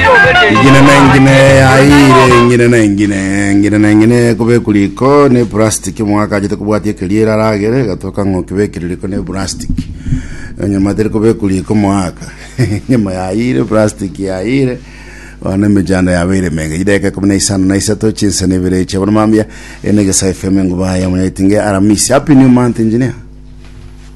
Engina na engina yaire engina na engina engina na engina ekobekwa riko ne plastic omogaka achete kobwatia ekeriera aragere egatoka ng'a okebekire riko ne plastic enyama tere kobekwa riko omogaka enyama yaire plastic yaire bono emechando yabeire emenge chideka ikomi na isano na isato chinsa na ibere eche bono mambia ene egesa fm engubaya monyaitinge aramisi happy new month engineer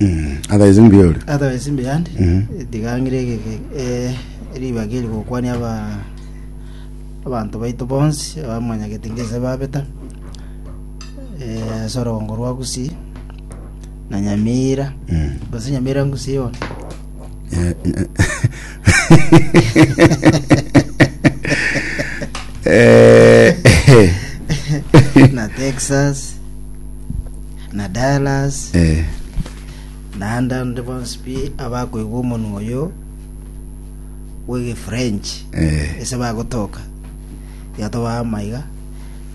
Mm, otherwise mbiore otherwise mbeyandi Mhm. digang'ire egege eh, ribaga eri gokwania aba abanto baito bonsi abamwanyagete ngese babeta eh, ase orogongo rwa gusii na nyamira Mm. gose nyamira ngusii yone Eh, eh. Eh, eh. na texas na Dallas, Eh, naende ande bonsi pi abakoigwa omonwa oyo bw'egefrench eh, ase bagotoka iga tobaama iga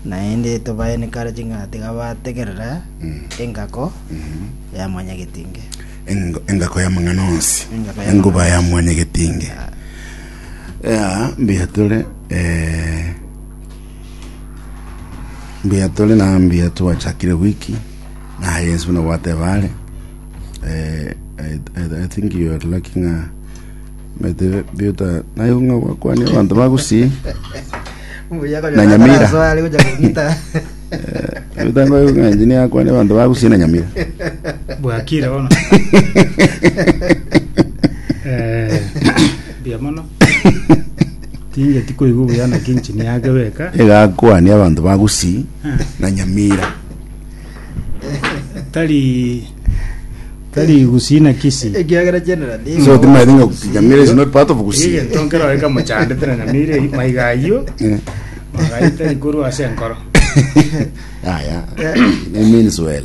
naende tobae nikare ching'ana tiga bategerera Mm. engako ya mwanyagetinge Engo- engako ya mang'ana onsi Engako ya enguba mang'ana ya mwanyagetinge ya mbuya tore eh, Mbuya tore na mbuya twachakire wiki na yes buna gwateba are eh, I, I, I think you are lacking a mete biuta nayo ng'a gwakwania abantu bagusi Na Nyamira. biuta ngoyo ng'a engineer yakwania abantu bagusi na nyamira bwakire bono Eh, mbuya mono Tingeti koigwa buya naki enchini yake beka. egakwania abanto ba Gusii na Nyamira. Tari tari Gusii na Kisii. ekiagera general So timaete ng'a Nyamira is not part of Gusii. Egento nkero aika mochandete na Nyamira eyi maiga ayio. Eh, Magaita ikorwa ase enkoro. Aya, it means well.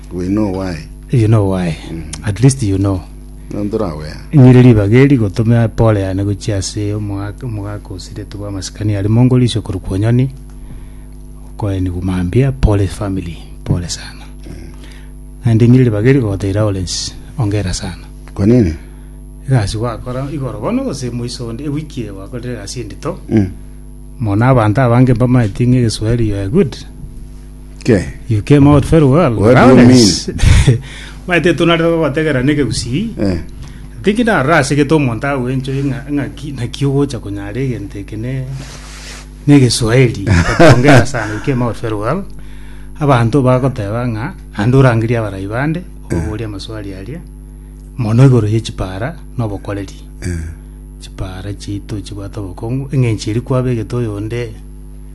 We know why. You know why. At least you know. Nonto ore aware. Nyiri ribaga eri gotome pole yane gochia ase omogaka omogaka osiretwe bw'amasikani aria mongo riso korwa kwonyoni okoenigwa mambia pole family pole sana naende nyiri ribaga eri gogotebia Lawrence ongera sana Kwa nini? egasi gwakora igoro bono gose moiso onde ewiki eye gwakorire egasi endito Mm. mono abanto abange mbamaeti ng'a egeswahili you are good Ke. You came out very well. What do you Lawrence. Maete tunare gotegera neke gusii. Eh. Tiki na rase gete omonto agwencho inga inga ki na ki ogocha kunyara egento eke ne ne Kiswahili. Ongea sana. You came out very well. Abanto bagoteba nga ande orangeria abarai bande oboria amaswali aria mono igoro ye chipara no bokoreri. Eh. Chipara chiito chibwate obokong'u eng'encho eri kwabegete oyonde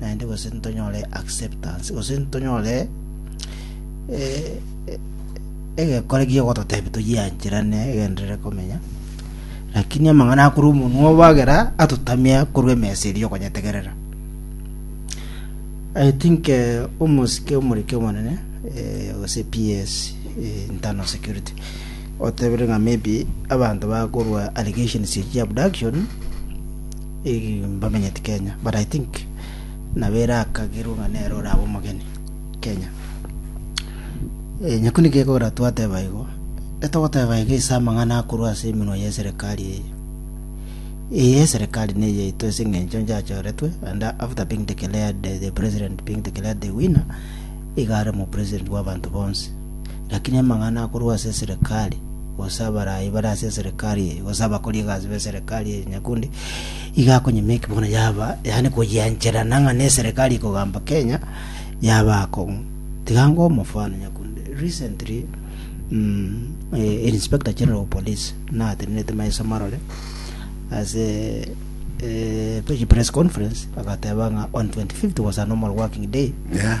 naende gose ntonyore acceptance, gose ntonyore egekore gi'ogototebia toyiancherane egenderere komenya, lakini amang'ana akorwa omonwa obo agera atotamia korwa emesa eria okonyetegerera. I think eh, omosike omorike omonene eh, gose PS eh, internal security otebire ng'a maybe abanto bakorwa allegations echia abduction Mbamenyeti Kenya but I think nabo erakagerwe ng'a nere orabe omogeni Kenya. Nyaku niki ekogera twateba igo? Getogoteba iga ase amang'ana akorwa ase emenwa y'eserekari eye. Eye eserekari neye yaito ase eng'encho nchachoretwe and after being declared the president being declared the winner iga are omopresident bw'abanto bonsi. Lakini amang'ana akorwa ase eserekari, gose abarai bare ase eserekari eye, gose abakori egasi b'eserekari eye nyakundi, iga akonyemeki bono yaba, yaani koyiancherana ng'a neserekari ekogamba Kenya, yaba akong'u. Tiga ngoe omofano nyakundi. Recently, mm, eh, Inspector General of Police natenenerete maiso marore ase eh, press conference agateba ng'a on 25th was a normal working day Yeah.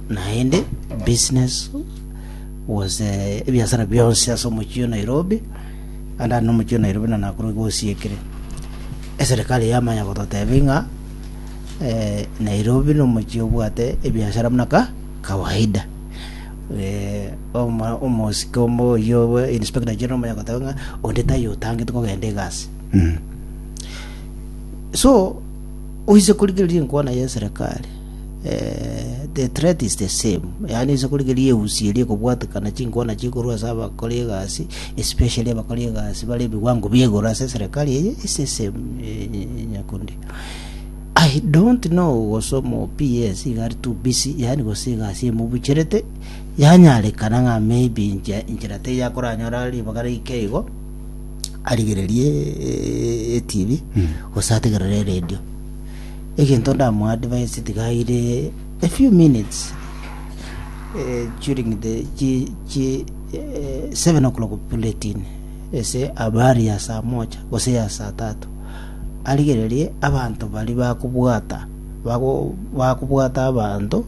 Naende business gose ebiasara bionsi ase omochie o Nairobi, ande aria nomochie o Nairobi na Nakuru igo osiekire. Eserekari yamanya gototebia ng'a eh, Nairobi nomochie obwate ebiasara buna ka kawaida. Eh, oma- omosike omo oyio obo Inspector General omanya goteba ng'a onde taiyo otangete kogenda egasi. So oise korigereria enkwana ya eserekari eh, the threat is the same yaani ase korigeria eusi eria ekobwatekana chinkwana chikorwa ase abakori egasi especially abakori egasi bare ebiwango biegoro ase serikali eye is the same eh, eh, nyakundi I don't know gosomo PS igari too busy yani gose egasi emubucherete yanyarekana ng'a maybe nche- enchera te yakoranyora ribaga rike igo arigererie eh, etv gose ategerere eredio Egento ndamoadvise tigaire a few minutes eh, during the chi, chi, eh, seven o'clock bulletin ese abari ya saa moja gose ya saa tatu arigererie abanto bari bakobwata bago- bakobwata abanto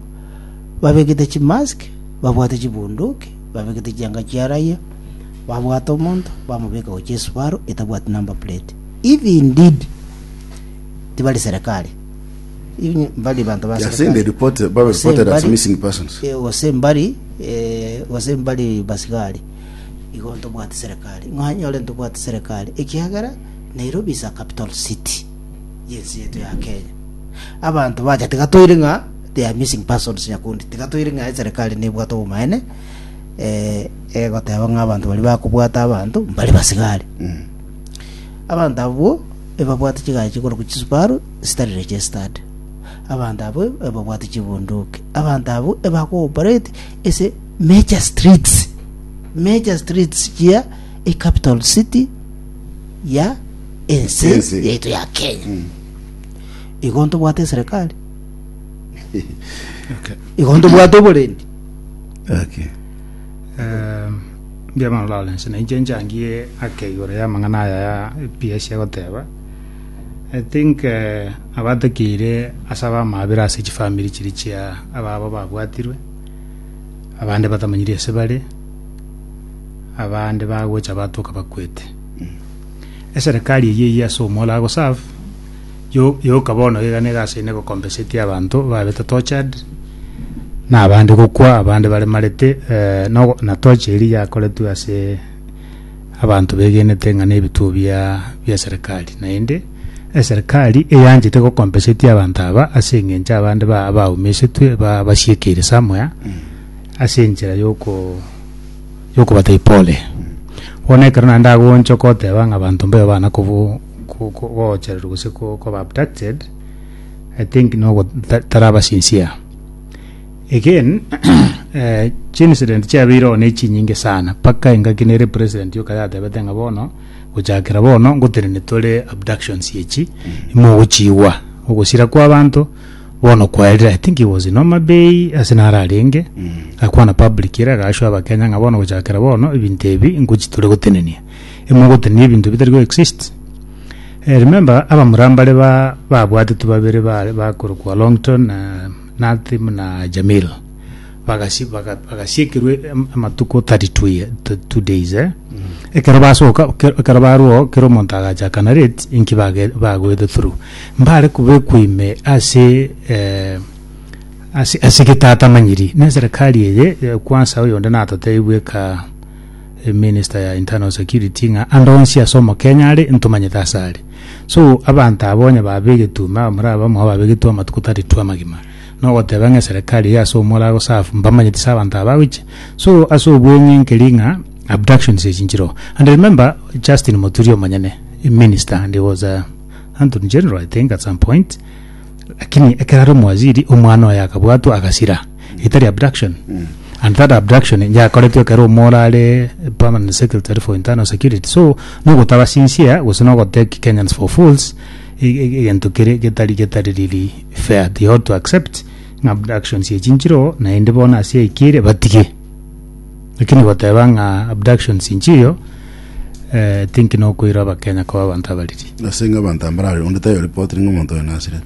babegete chimask babwate chibunduki babegete chianga chia raia babwate omonto bamobeka gochia esubaro etabwati number plate if indeed tibari serikali, inwe mbari banto ba They are saying they serikali. report, they were Gose reported as mbari- missing persons. eh, gose mbari eh, gose mbari basigari igo ntobwate serikali ng'anyore ntobwate serikali ekiagera nairobi is a capital city yensi yetu ya kenya abanto bacha tigatoire ng'a they are missing persons nyakundi tigatoire ng'a eserikali nebwate obomaene eh, egoteba ng'a abanto bari bakobwata abanto mbari basigari Mm. Abanto abwo ebabwate chigachi chikorokwa chisubaru chitarire chie stadi. Abanto abwo ebabwate chibunduki. Abanto abwo ebakooperate ase major streets. Major streets chia ecapital city ya ense Ense. yaitu ya Kenya. Igo ntobwate eserekari. Igo ntobwate oborendi. Okay. Um, Mbiamano Lawrence, na inche nchangie ake igoro y'amang'ana aya ya PS egoteba. I think eh, abatakeire ase abamabera ase chifamiri chiri chia ababo babwatirwe, abande batamanyiri ase bare, abande bagocha batoka bakwete. Eserekari eyio eyio ase omolo agoserve, Yo- yoka bono iga nigo ase ine gokompesetie abanto babete tortured, na abande gokwa abande baremarete eh, nogo- na torch eri yakoretwe ase abanto begenete ng'a nebituo bia bia serikali naende eserikari eyanchete gokompesetie abanto aba ase eng'encho abande ba- baumisetwe ba- basiekeire somewhere ase enchera yoko yokobatebia pole bono ekero naende agonchoka oteba ng'a abanto mbayo bana kobu. ko- ko- koochererwa gose ko- koba abducted i think nogo ta- taraba sincere again eh, chincident chiabeire oo nechinyinge sana mpaka engaki nere president yoka yatebete ng'a bono gochakera bono ngotenene tore abductions echi mogochiigwa ogosira kwa abanto bono kwaerire i think he was in Homa Bay ase naro arenge akwana public ere agaashoa abakenya ng'a bono gochakera bono ebinto ebi ngochia tore gotenenia emogotenena ebinto bitari go exist. Eh remember abamura mbare ba babwatetwe babere bare bakorokwa Longton na Nathy buna Jamil. Bagasi baga bagasiekerwa e- em- amatuko 32 ye- t- two days eh. Ekero basoka ke- ekero barwo oo kera omonto agacha akana rate inki bage bagoete through. Mbare kobekwa ime ase eh ase ase getatamanyiri, na eserekari eye eh kwansa oyonde natotebi bweka. Minister ya internal security ng'a ande onsi ase omokenya are ntomanyete ase are. So abanto aba onye babegetwe ime abamura abamo iga babegetwe amatuko tari two amagima. Na ogoteba ng'a eserekari iga ase omwe orago serve mbamanyeti ase abanto aba agocha. So ase obweng'e nkeri ng'a abductions echi nchiroo. And remember Justin Muturi omonyene minister and he was a Antony General I think at some point. Lakini ekero are omowaziri omwana oye akabwatwa agasira. etari abduction and that abduction yakoretwe ekero omora are permanent secretary for internal security so nogotaba sincere gose nogotake kenyans for fools e- e- egento kere getari getari riri fair they ought to accept ng'a abductions echi nchiroo naende bono ase eki ere batige lakini goteba ng'a abductions nchiyo eh, think nokoira abakenya koba abanto abariri Ase ng'a abanto mbarare onde tayo report ng'a omonto oyo nasirete.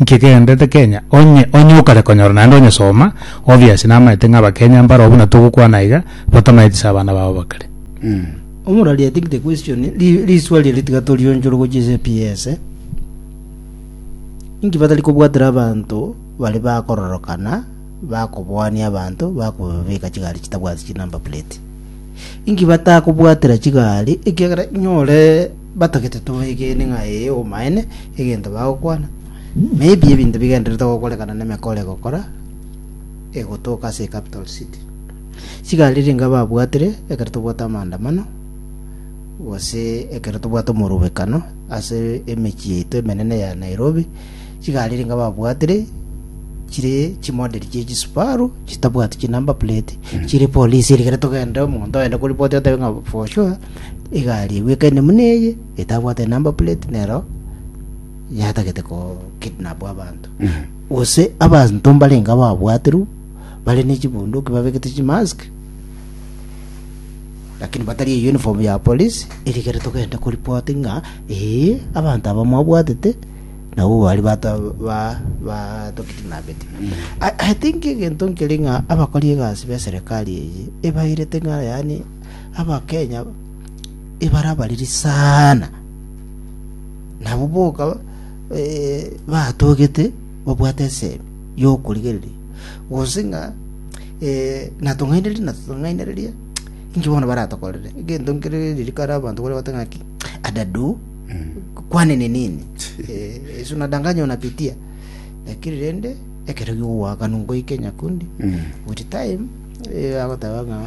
Inki ekegenderete Kenya? Onye onye okare konyora naende onyesoma, obvious namaete ng'a Abakenya mbaro buna togokwana iga, batamaeti ase abana babo bakare. Omorari I think the question ri- riswa riria tiga torionchore gochia ase PS eh. Inki batari kobwatera abanto bari bakororokana bakoboania abanto bakobabeka chigari chitabwati chinumber plate inki batakobwatera chigari ekiagera nyore Batagete tobaegene ng'a ee obomaene egento bagokwana, na ebi ebinto bigendererete gokorekana n'emekora egokora egotoka ase ecapital city. Chigari ringa babwatire ekero tobwate amaandamano gose ekero tobwate omorobekano ase emechie yaito emenene ya Nairobi, chigari ringa babwatire chire chimodel chie chisubaru chitabwati chinumber plate chire polisi eri ekero togenda omonto ogende korepoti otebe ng'a for sure Egari egwekaine buna eye, etabwate number plate nero yatagete ko kidnap abanto. Gose abanto mbarenge ababwaterwe bare ne chibunduki babegete chimask lakini batari e uniform ya police erikere togende ko report ng'a ee abanto aba mwabwatete nabo bari bata ba ba to kidnapete. I, I think egento nkeri ng'a abakori egasi be serikali eye ebairete ng'a yani Abakenya ebara abariri sana. Nabo boka eh, batogete babwate esemi yokorigereria. Gose ng'a eh, natong'ainereria natong'ainereria inki bono baratokorere egento nkere ririkare abanto kore bate ng'aki adadu kwani ni nini Eh, yesu nadanganya unapitia lakini rende ekero giogwakanu ngoike nyakundi with time eh, agoteba ng'a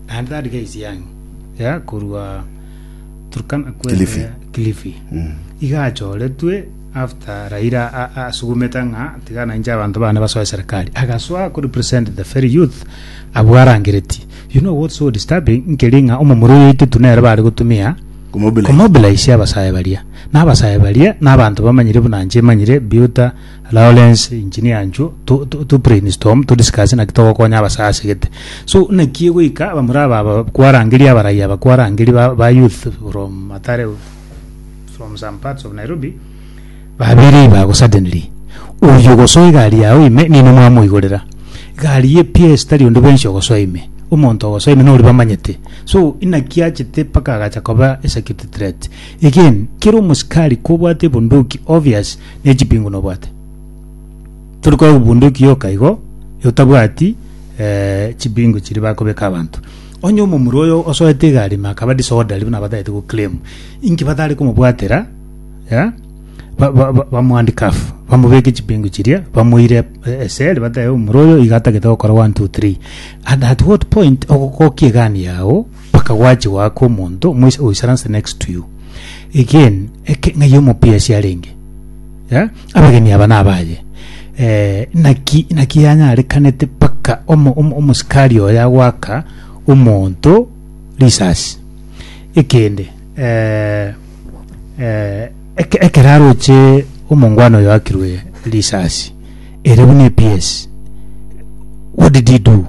naende tari gaichie ang'e ya korwa Turkana kwete Kilifi. Kilifi iga achoretwe after Raila a- a- asugumete ng'a tiga nainche abanto bane basoe serikali agasoa ko represent the very youth abwo arangereti you know what's so disturbing nkeri ng'a omomura oyo oito tunere bare gotumia Kumobilize. komobilize abasae baria na abasae baria na abanto bamanyire buna nche manyire biuta Lawrence, engineer anchwo to, to, to brainstorm to discuss naki togokonya abasaya ase gete so naki goika abamura aba aba kwarangeri abarai aba kwarangeri ba, ba youth from matare from some parts of nairobi babere ibago suddenly oyo gosoa egari yao ime nino mwamoigorera egari ye ps tari onde bwensi ogosoa ime omonto ogosoa ime nori bamanyete so inaki achete mpaka agacha koba a security threat again kera omosikari kobwate ebunduki obvious ne chipingu nobwate. Tori korora obunduki yoka igo, otabwati eh, chipingu chiri bakobeka abanto. Onye omomura oyo osoete igari ime akaba disorderly buna batagete go claim, inki batare komobwatera ya ba- ba- ba- bamwandikafu bamobeke chipingu chiria bamoire eh, eseli batebe omura oyo iga atagete gokora 1 2 3 and at what point ogokokia egani yao mpaka gwachigwa ake omonto omoisa oisaranse next to you again eke ng'ai omopiasi arenge yeah? abageni aba nabaye eh, naki naki yanyarekanete mpaka omo- omo- omosikari oyo agwaka omonto risasi ekende eh, eh, eke- ekero aroche omongwana oyo akirwe risasi Ere buna epiesi. What did he do?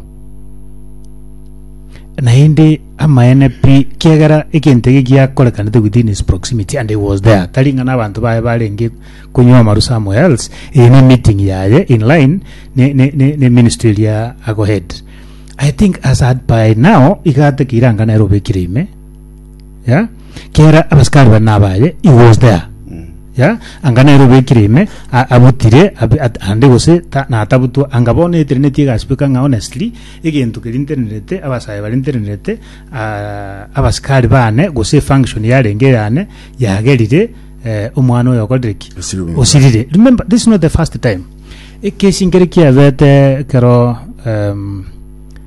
Naende amaene pi kiagera egento ege giakorekanete within his proximity and he was there. Tari ng'a n'abanto baye barenge konywa amaru somewhere else. Eye ne meeting yaye in line ne, ne, ne, ne ministry eria agohead. I think as at by now iga atakeire anga nere obekire ime. ya kera abasikari bane abaye he was there ya anga nere obekire ime a- abutire abi- at- ande gose ta- natabutwa anga bono etereneti egasibeka ng'a honestly egento keria nterenerete abasae baria nterenerete ah, abasikari bane gose function yarenge yane yagerire eh, omwana oyo okorire ki Osirire omwana. osirire remember this is not the first time ekesi nkere kiabete kero um,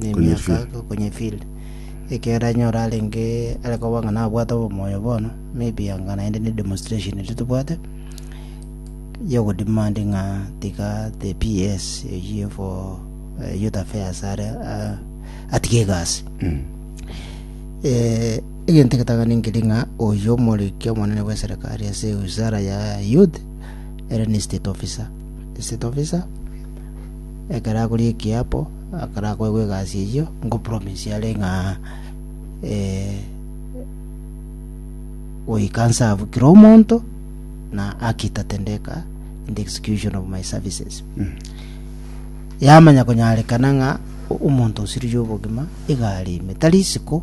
nemiaka okonyefield ekiagera onye ore arenge are koba ng'a nabwate obomoyo bono maybe anga naende ne demonstration eria tobwate ya ogodemand ng'a tiga the PS eyio for eh, youth affairs are ah, atige egasi eh, egento egetang'ani nkeri ng'a oyo omoriki omonene bwa eserikari ase wizara ya youth ere ni state officer state officer Ekero akoria ekiapo, akarakoegwa egasi eyio ngopromise are ng'a goika nserve kera omonto na haki tatendeka in the execution of my services. Yamanya konyarekana ng'a omonto osirigwe obogima iga are ime, tari isiko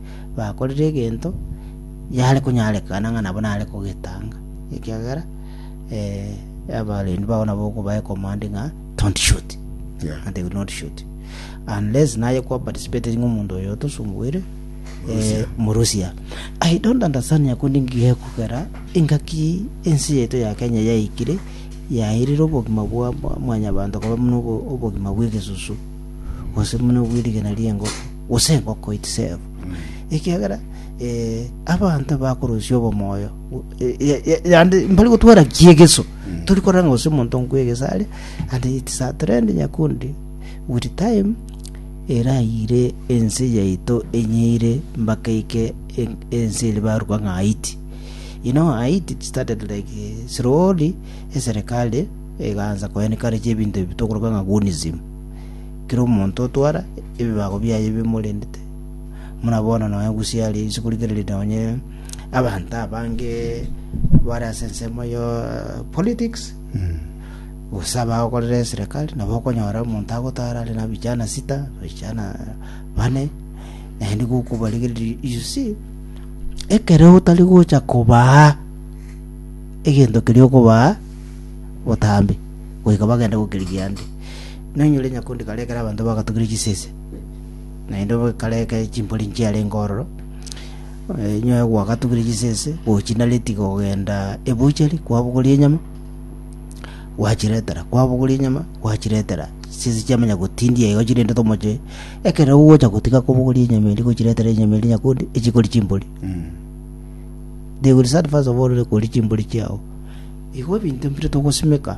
bakorire egento yare konyarekana ng'a nabo nare kogetanga, ekiagera eh, abarendi bao nabo okobae command ng'a don't shoot Yeah. and they will not shoot unless naye kwa participate ng'a omonto oyo otosumbuire eh, murusia i don't understand nyakundi ngigekugera engaki ense yaito ya kenya yaikire yairire obogima bwa bwa mwanyabanto koba buna obo- obogima bw'egesusu gose buna obw'erigena ri'engoko gose engoko itisebu, ekiagera eh, abanto bakorusia obomoyo o- e- e- e- yande mbari gotwara kiegeso tori korora ng'a gose omonto nkwegesa aria and it's a trend nyakundi with time erayire ense yaito enyeire mpaka ike en- ense eri baruka ng'a haiti you know haiti it started like eh, slowly eserikali egaanza koencourage ebinto ebi tokoroka ng'a gunism Kera omonto otwara ebibago biaye bimorendete, buna bono nonya Gusii aria inse korigereria nonye abanto abange bare ase ensemo ya politics gose abagokorera eserekari nabo okonyora omonto agotara are na vijana sita vijana bane naende igo okobarigereria you see ekero otari gocha kobaa egento keria okobaa botambe goika bagende gokerigia ande Noinyore nyakundi kare ekero abanto bagatugire chisese, naende kare ekero chimpori nchiarenge ororo, eh, inwe gwagatugire chisese, gochinareti kogenda ebuchari kwabogoria enyama, gwachiretera kwabogoria enyama gwachiretera chisese chiamanya gotindia igo chirende tomoche ekero ogocha gotiga kobogoria enyama eria gochiretera enyama eria nyakundi echikori chimpori they will start first of all koria chimpori chiao igo ebinto mbire togosimeka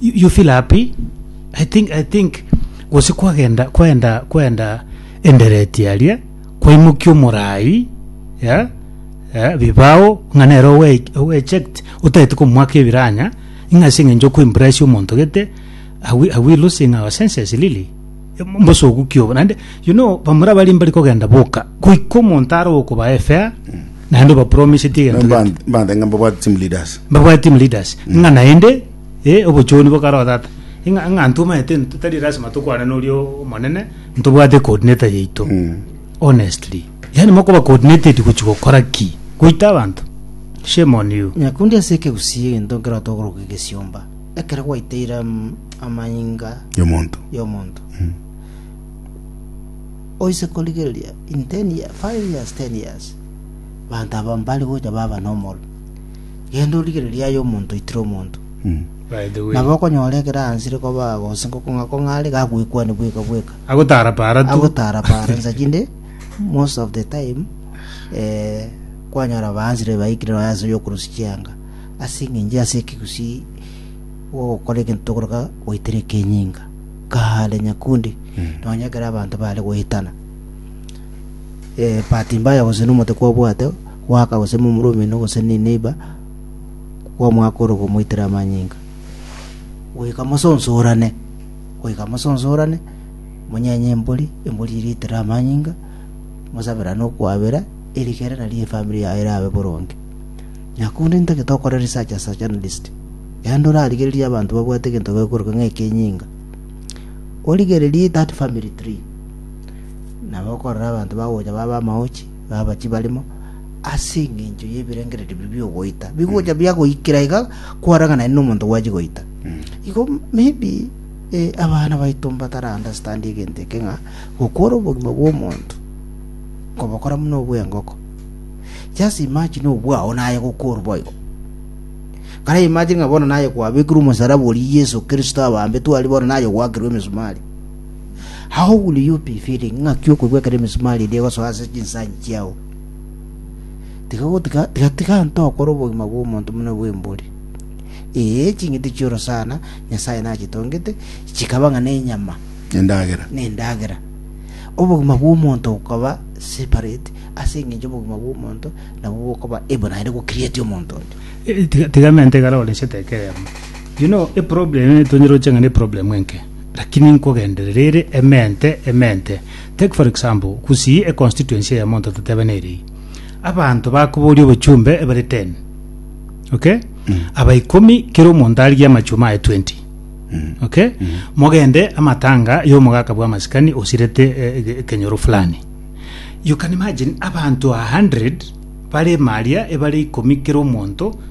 You, you feel happy? I think, I think gose kwagenda kwenda kwenda endereti aria kwaimokia omorai yeah? yeah, bibao ng'a nere owe- owecheked otaeti komwaka ebiranya ing'a ase eng'encho okoimpress omonto gete are we, are we losing our senses lili mbosogu kiobo naende you know bamura bari mbari kogenda boka goika omonto are okobae fair naende obapromiseti egento gete Mba- mbandenga mbabwate team leaders mbabwate team leaders ng'a naende Ee, obochoni bokaroo tata. Ing'a ng'a ntomaete nto tari lasima tokwane noria o- omonene, ntobwate coordinator yaito. Mm. Honestly. Yaani mokoba coordinated gochi gokora ki? Goita abanto? Shame on you. Nyakundi ase ekegusii egento nkero togoroka egesiomba, ekero gwaiteire am- amanyinga Yomonto. y'omonto. Oise korigereria in 10 year, 5 years, 10 years, banto aba mbare gocha baba nomoro. Genda origererie aye omonto oitire omonto. Nabo okonyora ekero aanchire kobaa gose ngokong'akong'a are, gagwekwania bweka bweka. Agotara-para tu. Agotarapara nsa chinde, most of the time, eh, kwanyora baanchire baikire nonya ase oyokorosia chianga. Ase eng'encho ase ekegusii ogokora egento tokoroka goitera ekenyinga, kaare nyakundi, nonya ekero abanto bare goetana. Eh, bahati mbaya gose nomote kwabwate, Goaka gose momura omino gose neneiba kw'omwaka ore okomoitera amanyinga, goika mosonsorane. Goika mosonsorane, monyenye embori, embori eria eitere amanyinga, mosaberane okwabera, erio kera nario efamiri yago erabe boronge. Na korende ntagete okore research as a journalist, yaani torarigererie abanto babwate egento gekoroka ng'a ekenyinga. Origererie that family tree, nabo okorora abanto bagocha babe amagochi, nabachi barimo, ase engencho y'ebirengererio biria bi'ogoita bigocha biagoikera iga kwaraganane nomonto gwachia goita. Igo maybe eh, abana baito mbatara understand egento eke ng'a gokora obogima bw'omonto kobokora buna obw'engoko. Just imagine obwao naye gokorwa boigo. Kare imagine ng'a bono naye kwabekirwe omosalaba oria Yesu Kristo abambetwe aria bono naye gwakirwe emisumari. How will you be feeling ng'aki okogwekera emisumari eria egosoa ase chinsanyi chiao? Tiga gotiga tiga tiga nto okore obogima bw'omonto buna bw'embori. Ee, ching'iti chi'oro sana Nyasae nachitongete, chikaba ng'a nenyama, Endagera. nendagera. Obogima bw'omonto bokaba separate ase eng'encho obogima bw'omonto nabwo bokaba ebo naende gocreate omonto onde. Eh, tiga- tiga mente igare oresete ekeremo you know a problem eh, tonyeroche ng'a ne problem enke Lakini nkogenderera ere emente emente. Take for example, gusii e constituency eye monto totebe nere eye. Abanto bakoboria obochumbe ebare 10. Okay? Aba ikomi kera omonto arigie amachuma aye 20. Okay? Mogende amatanga y'omogaka bwa masikani osirete eh, ege- ekenyoro fulani. You can imagine abanto 100 bare maria ebare ikomi kera omonto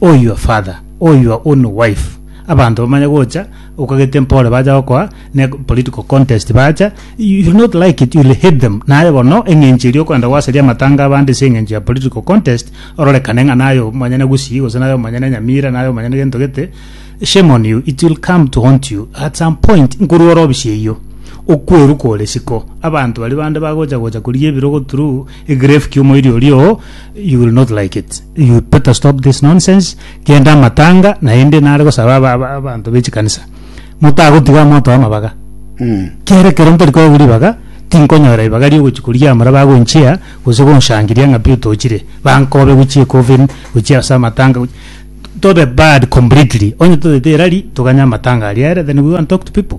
Oh your father, oh your own wife. Abanto bamanye gocha okagete mpore bacha gokoa ne political contest bacha you will not like it you will hate them naye bono eng'encho eria okwenda gwasaria amatanga abande ase eng'encho ya political contest ororekane ng'a naye omonyene gusii gose naye omonyene nyamira naye omonyene gento gete shame on you it will come to haunt you at some point nkorwa ore obisieyio okweruka ore siko abanto baria bande bagocha gocha korigia ebirogo through Egrave kia omoiri oria oo you will not like it you better stop this nonsense kende amatanga naende nare gosaba aba- aba- abanto bechikanisa motagotiga amoto amabaga kere kero ntori kobu ribaga tinkonyora ribaga riogochi koria amara bagonchia gose gonshangiria ng'a pi otochire bankobe gochia ecoffin gochia ase amatanga gochi- tobe bad completely onye totete erari toganye amatanga aria ere then we go and talk to people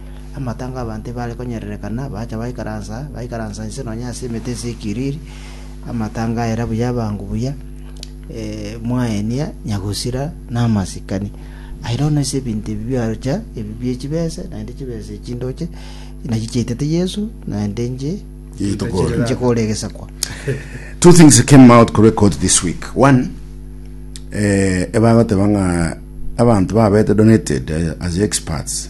Amatango 'abanto ebare konyererekana bacha baikaransa, baikaransa inse nonya ase emete ase ekiriri, amatango aera buya abangu buya, eh, mwaenia nyagusira na amasikani. Aye nono ase ebinto ebi biacha, ebi bie chibese, naende chibese echi ndoche, nachi chiaitete Yesu, naende nche, Yeito kore. nche kore egesakwa. Two things came out kore court this week. One, eh, ebagoteba ng'a abanto babete donated eh, as experts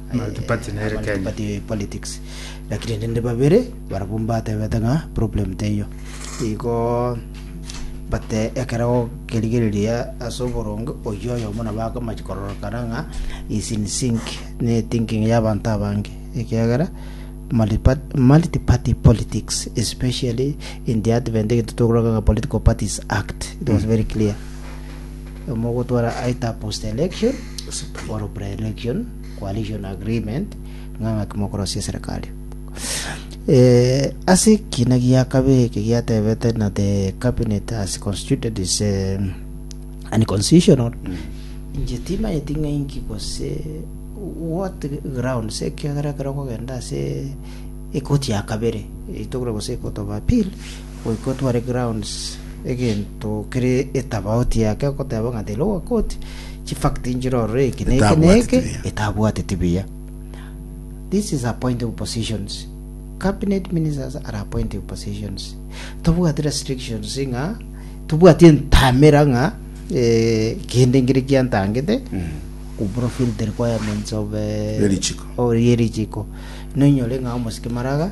Multiparty nere Kenya. multiparty politics lakini nende babere barabwo mbatebete ng'a problem teiyo igo bate ekero kerigereria ase oboronge oyio oyomo nabo akomachi kororokana ng'a is in sync ne thinking ya abanto abange ekiagera multipa- multiparty politics especially in the advent egento tokoroka ng'a political parties act it was very clear omogotwara aita post-election or pre-election coalition agreement ng'a ng'aki mokorosia eserekari. Eh, ase ekina gia kabere eke giatebete na the cabinet has constituted is eh, unconstitutional inche timanyeti ng'a inki gose what ground se ekiagera ekero okogenda ase ekoti ya kabere itogora gose ekoti of appeal Goika otware grounds egento kere etabauti yake goteba ng'a the lower court chifact nchire ororo eke na eke na Etabwateti eke buya. etabwateti buya this is appointive positions cabinet ministers are appointive positions tobwati restrictions ng'a tobwati entamera ng'a eh, kende nkere kiantangete kufulfill the requirements of eh, Erichiko. o- erichiko nonyore ng'a omosike maraga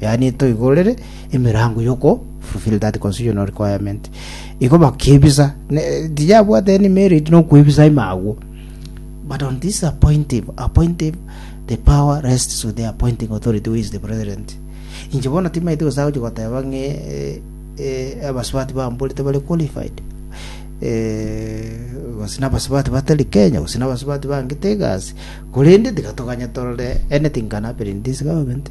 yaani etoigorere emerango yoko fulfill that constitutional requirement igo bakebisa ne- tiyabwate any merit nokwebisa ime agwo but on this appointive appointive the power rests with the appointing authority who is the president inche bono timaite gose agochi goteba ng'e eh, eh, abasubati bamborete bare qualified eh, gose nabasubati batari kenya gose nabasubati bangete egasi korende tiga toganye torore anything can happen in this government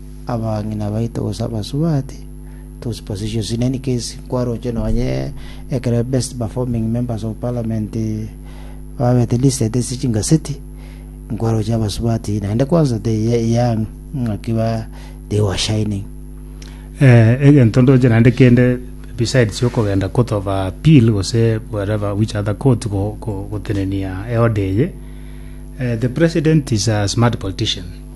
abang'ina baito gose abasubati those positions in any case kwaroche nonye ekero best performing members of parliament babete listed ase chingaseti nkwaroche abasubati naende kwanza the young ng'aki ba they were shining Eh, egento ndoche naende kende besides okogenda court of appeal gose wherever which other court go- go- gotenenia eode eye eh, the president is a smart politician